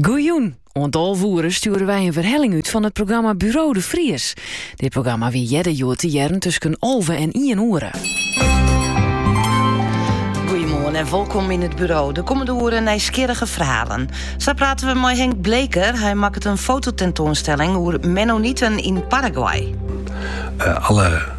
Goejûn! Oant alve oere stjoere wy in werhelling út fan it programma Buro de Vries. Dit programma wie earder hjoed te hearren tusken alve en ien oere. Goeiemoarn en wolkom yn it buro. De kommende oeren nijsgjirrige ferhalen. Sa prate we mei Henk Bleker. Hy makket in fototentoanstelling oer Mennoniten yn Paraguay. Eh, alle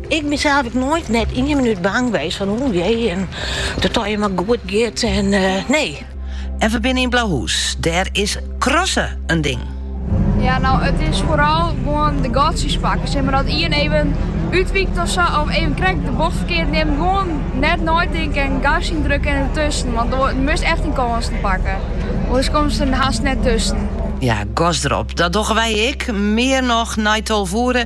Ik bin sels ek noait net ien minút bang west fan oeh jee en dat dy him mar goed giet en nee. En we binne yn Blauhûs, dêr is crossen in ding. Ja no it is foaral gewoan de gatsjes pakken, stel mar dat ien even útwykt of sa of even krekt de bocht ferkeard nimt, gewoan net neitinken en gas yndrukke en dertusken, want do moatst echt dyn kânsen pakke, oars komst der hast net tusken. Ja, gas derop, dat dogge wy ek, mear noch nei tolve oere.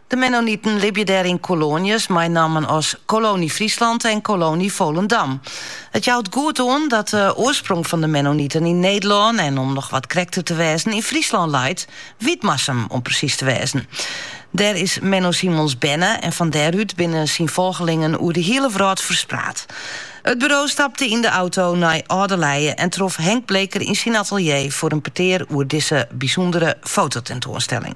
De Mennoniten libje dêr yn koloanjes mei nammen as Kolonie Fryslân en Kolonie Volendam. It jout goed oan dat de oarsprong fan de Mennoniten yn Nederlân en om noch wat krekter te wêzen yn Fryslân leit, Wytmarsum om presys te wêzen. Dêr is Menno Simons berne en fan dêrút binne syn folgelingen oer de hiele wrâld ferspraat. It buro stapte yn de auto nei Alde Leie en trof Henk Bleker yn syn atelier foar in petear oer dizze bysûndere fototentoanstelling.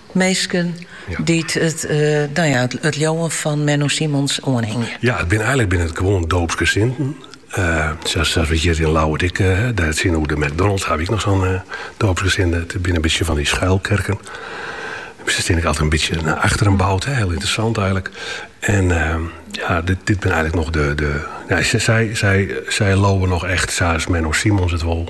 Minsken dy't it leauwen fan Menno Simons oanhingje. Ja, it binne eilek binne it gewoan doopsgesinten. Sa's we hjir yn Ljouwert ek. Dêr tsjinoer de McDonalds ha we ek noch sa'n doopsgesinde. It binne in bytsje fan dy schuilkerken. Se steane ek altyd in bytsje nei achteren boud. Hiel ynteressant eilek. En ja, dit dit binne eilek noch de de. Sy sy sy sy leauwe noch echt sa's Menno Simons it wol.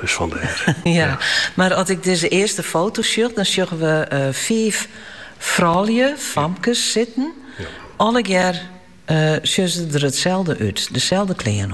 Dus vandaar. ja, mar as ik dizze earste foto sjoch, dan sjogge we eh, fiif froulju, famkes, sitten. Allegear eh, sjogge se der itselde út, deselde klean.